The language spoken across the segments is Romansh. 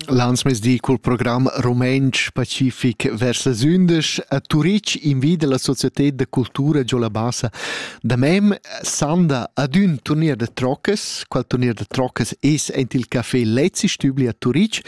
Landsmesdi cul program rumentsch pacific vers las undisch a Turitg invida la Societed da cultura giò la Bassa da mem sanda ad ün turnier da troccas. Qual turnier da troccas es aint il Café Lezi Stübli a Turitg?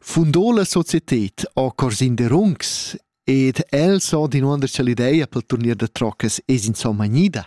Fundò la Societed a Corsin de Rungs ed el s'ha dinuonder cha l'ideia pel turnier da troccas es insomma gnida.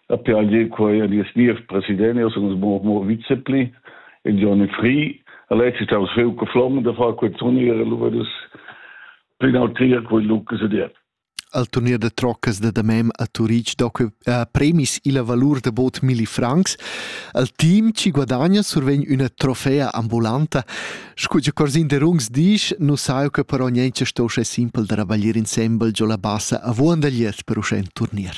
per agir quai a dies nies president, io sun mo mo vicepli, e Johnny Free, all'ex ist aus viel geflogen, da far quel Turnier, allora das penaltier quel Lucas ediert. Al turnier de troccas de Damem a Turic do que a premis illa valur de bot milli francs. Al team ci guadagna survegn üna trofea ambulanta. Scu che Corsin de Rungs disch, nu sai che però niente sto sche simpel da rabaglier insembel giò la bassa a Vuandagliet per uscè in turnier.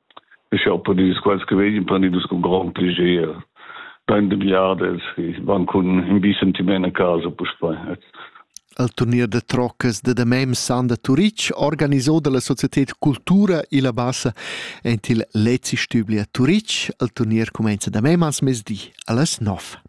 Sch'eu pon dir quels che vegnan prendidus cun grond piager bain de biadas e van cun in bi sentiment a casa puspei. El turnier da troccas da damem Sanda Turic, organiso dalla società Cultura Ila Bassa entil Lezi Stübli a Turic, el turnier comenza damem als mesdi allas 9.